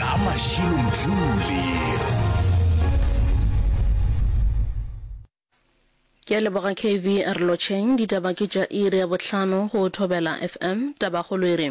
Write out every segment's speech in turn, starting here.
ka mašilo motšule ke a leboga kv a re lotšheng ditaba ke tša iri ya bohlano go thobela fm tabagolo e re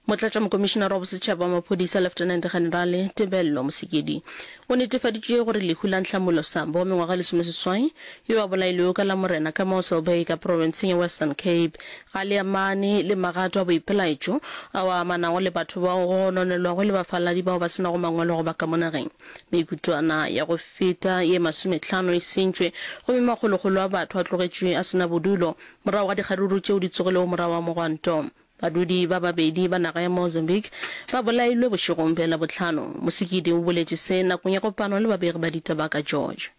motlatša mokomišenara wa bosetšhaba wa maphodisa lieutenant generale tebello mosekedi o netefaditše gore lehu la ntlhamulo sambo wa mengwaga lesomeseswai yo a bolailwego ka la morena ka moselbay ka profenseng ya western cape Ga le amane le magato a boipelaetšo ao a amanago le batho bao go gononelwago le bafaladi bao ba se nago mangwalo go ba ka mo nageng. Mekutwana ya go feta ye masometlhano e sentšwe, gomme makgolokgolo a batho a tlogetšwe a se na bodulo morago ga dikgaruru tšeo di tsogilego morago ga mogwanto. Badudi ba babedi ba naga ya Mozambique ba bolailwe bošegong bja Labohlano. Musikidi o boletše se nakong ya kopano le babegi ba ditaba ka George.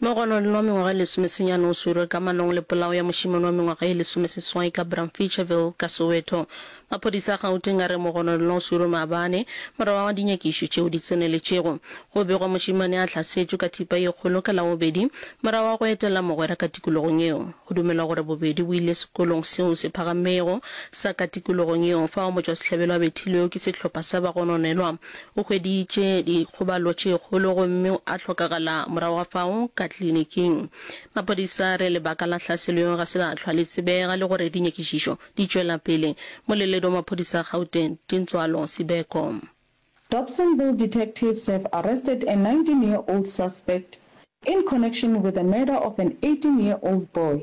Mo go nwa le nwa mengwaga e lesomesenyane o swerwe ka manong le polao ya mošemane wa mengwaga e lesomeseswai ka Bramfeacherville ka Soweto. Maphodisa a Gauteng a re mo go nwa le nwa o swerwe maabane morago ga dinyakišo tšeo di tseneletšego. Go begwa mošemane a hlasetšwe ka thipa ye kgolo ka Labobedi morago ga go etela mogwera ka tikologong yeo. Go dumelwa gore bobedi bo ile sekolong seo se phagamego sa ka tikologong yeo fao motšwasehlabelo a bethilwego ke sehlopha sa bagononelwa O hweditše dikgobalo tše kgolo gomme a hlokagala morago ga fao ka kliniking. Maphodisa a re lebaka la hlaselo yeo ga se la hlwa le tsebega le gore dinyakišišo di tšwela pele. Moleledi wa maphodisa a Gauteng, Tintswalo Sibeko. Dobsonville detectives have arrested a nineteen year old suspect in connection with the murder of an eighteen year old boy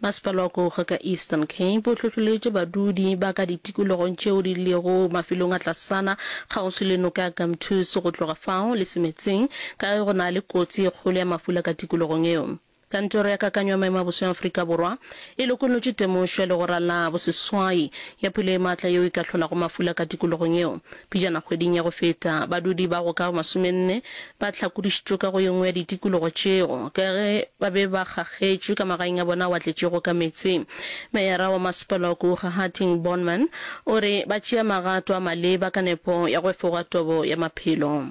Masepala wa Kouga ka Eastern Cape o hlohloletše badudi ba ka ditikologong tšeo di lego mafelong a tlasana kgauswi le noka ya Gamtoos go tloga fao le se meetseng ka ge go na le kotsi e kgolo ya mafula ka tikologong yeo. Kantoro ya Kakanyo ya Maemo a Boso ya Afrika Borwa e lokolotše temošo ya legora la boseswai ya pula e matla yeo e ka hlolago mafula ka tikologong yeo. Pejana kgweding ya go feta, badudi ba go ka masomenne ba hlakodišitšwe ka go ye nngwe ya ditikologo tšeo ka ge ba be ba kgakgetšwe ka magaeng a bona a watletšego ka meetse. Meyara wa Masepala wa Kougahateng Bornman o re ba tšea magato a maleba ka nepo ya go efoga tobo ya maphelo.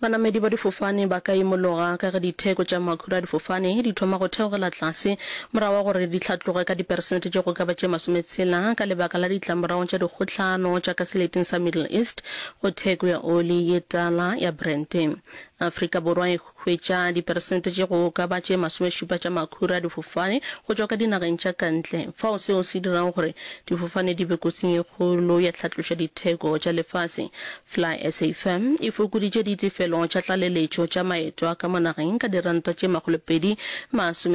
Banamedi ba difofane ba ka imologa ka ge ditheko tša makhura a difofane di thoma go theogela tlase morago ga gore di hlatloge ka diperesente tše go ka ba tše masometshela ka lebaka la ditlamorago tša dikgohlano tša ka seleteng sa Middle East go theko ya oli ye tala ya Brent. Afrika Borwa e Hwetša diperesente tše go ka ba tše masomešupa tša makhura a difofane go tšwa ka dinageng tša ka ntle, fao seo se dirago gore difofane di be kotsing e kgolo ya tlhatloša ditheko tša lefase. FlySA firm e fokoditše ditefelo tša tlaleletšo tša maeto a ka mo nageng ka diranta tše makgolopedi masome